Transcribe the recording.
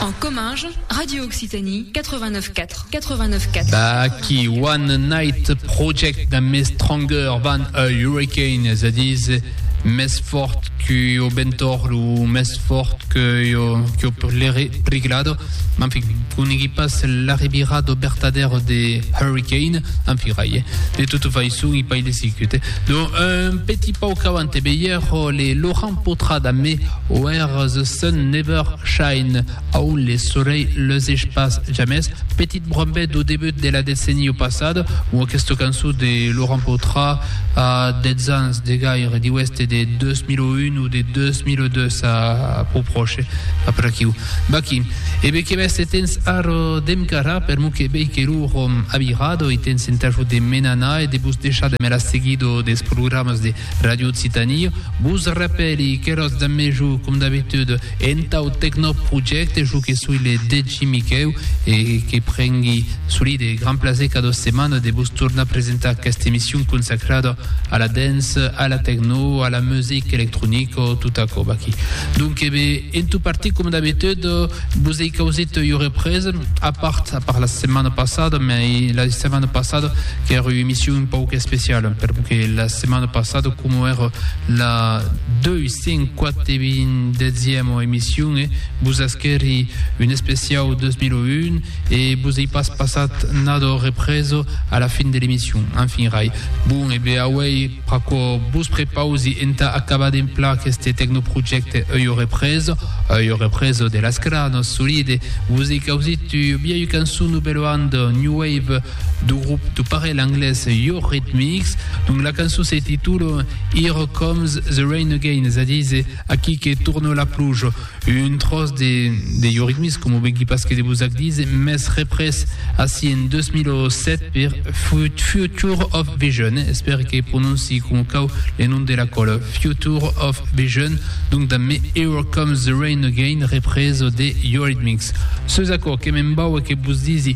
En comminge, Radio Occitanie 89 4, 89 4. D'aquí One Night Project d'un mes stronger van a hurricane, és a dir, més fort que o bentor o més fort que o, que o priglado. En fi, conegui pas l'arribira do bertader de hurricane, en fi, rai, eh? De tota façon, i pas de sicut, eh? Donc, un petit pauc avant, e beier, les Laurent Potra damb me Where the sun never shine, a on le solei leuseish pas jamès, petit brombet do debut de la decenio passada, o aquesta cançon de Laurent Potra a 10 ans de gaire, diu èster de 2001 o de 2002, a pro pròche, a per aquiu. Vaquí. E be que mès se tens ara demb cara, per mon que vei que lo rom a virado e tens entà jo de me'n anar e de vos deishar de me la seguir do des programas de Radio Occitanie vos rapèli que ros de mejor com d'abitude entau Tecnoprojecte jo que soi le Degi Miquèu e que prengui solide gran plaser cada setmana de vos tornar presentar aquesta emission consacrada a la dance, a la techno, a la musique électronique o tot aquò aquí. Donc, bé, en tout parti com d'habitude vos ei causit eu represa a part, a part la setmana passada, mais la setmana passada Qu'ère ua emission un pauc especiala, perque la setmana passada, coma ère la 248ema emission, e vos asquèri un especiau 2001, e vos ei pas passat nada represa a la fin de l'emission. Enfin, rai. Bon, e be auei pr'aquò vos prepausi entà acabar d'emplar aqueste tecnoprojècte ua represa, ua represa de las cranas solide. Vos ei causit ua biaia cançon Nouvelle Bande, New Wave, du grup de parelh anglés Eurythmics, donc la cançon se titula Here Comes the Rain Again, es a dire Aquí que torna la pluja, un tròç de, de Eurythmics, com o vegui pas que de vos ac dire, mès représ ací en 2007 per Future of Vision, eh? espère que prononci com cau le nom de la còla, Future of Vision, donc damb me Here Comes the Rain Again, représ de Eurythmics. Seus aquò que me'n vau e que vos disi,